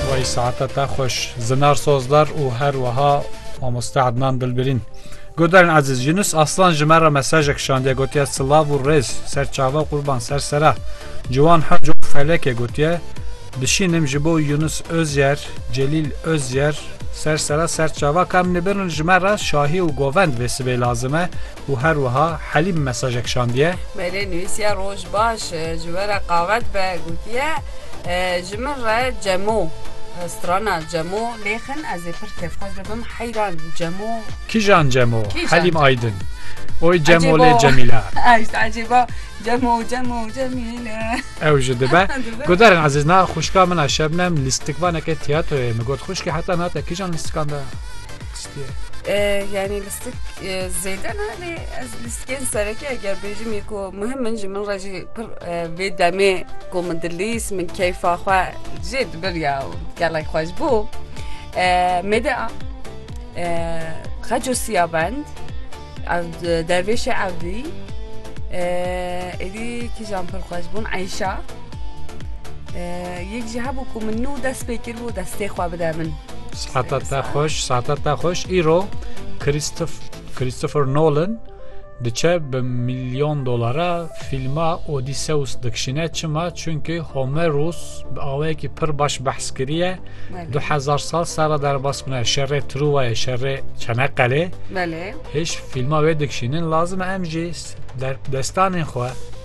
Wey saete te xweş Zinar Sozdar û her wiha Mamoste Ednan Dilbirîn. Guhdarên Ezîz Yunus Aslan ji me re mesajek şandiye gotiye silav û rêz ser çavan qurban ser sere Ciwan Hac û Felekê gotiye Bişînim ji bo Yunus Özyer, Celîl Özyer, ser sere ser çava ka em nibin ji me re şahî û govend vê sibê lazim e û her wiha Helîm mesajek şandiye. Mêrê nivîsiye roj baş ji we re qave dibe gotiye, Ji min re Cemo, strana Cemo lê xin ez ê pir kêfxweş bibim heyran Cemo. Kîjan Cemo? Helîm Aydin. Oy Cemo lê Cemîla. Ay işte ecêba Cemo Cemo Cemîle. Ew ji dibe. Guderin ezîz na xwişka min a Şebnem lîstikvaneke tîyatroyê min got xwişkê heta na te kîjan lîstikan da? Yanî Sik zêde ne lê ez li sikên serekê eger bêjim yê ku muhim min ji min re jî pir vê demê ku min dilîst min keyfa xwe jê dibir ya û gelek xweş bû mêde a xeco siya bend ev dervêşê evdî êdî kîjan pir xweş bûn eyşa yek jî hebû ku min nû dest pê kir bû destê xwe bide min Saata te xweş, saata te xweş. Îro Christopher Nolan diçe bi milyon dolara fîlma Odysseus dikişîne çima çünkü Homerus bi awayekî pir baş behs kiriye du hezar sal sera derbas bûne şerê Truvayê şerê Çeneqelê hêj fîlma wê dikişînin lazim e em jî destanên xwe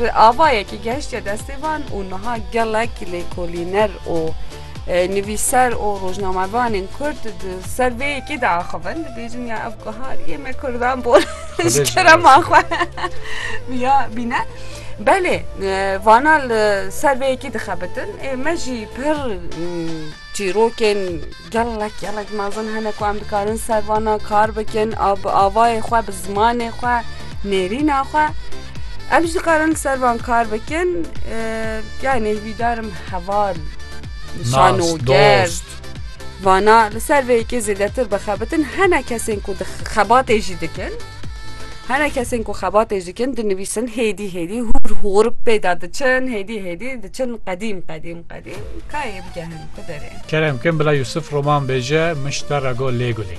Bi avayekî gehiştiye destê van û niha gelek lêkolîner û nivîser û rojnamevanên Kurd di ser vê yekê de axivin dibêjin ya ev guhariyê me Kurdan bûn ji kerema xwe ya bîne. Belê vana li ser vê yekê dixebitin ê me jî pir çîrokên Gelek gelek mezin hene ku em dikarin ser vana kar bikin a bi avayê xwe bi zimanê xwe nêrîna xwe em jî dikarin ser van kar bikin yanê hîdarim heval şanoger vana li ser vê yekê zêdetir bixebitin hene kesên ku xebatê jî dikin hene kesên ku xebatê jî dikin dinivîsin hêdî hêdî hûr hûr pêda diçin hêdî hêdî diçin qedîm qedîm qedîm kayê bike Kerem kim bila Yusuf roman bêje, min ji te re got lê gulê.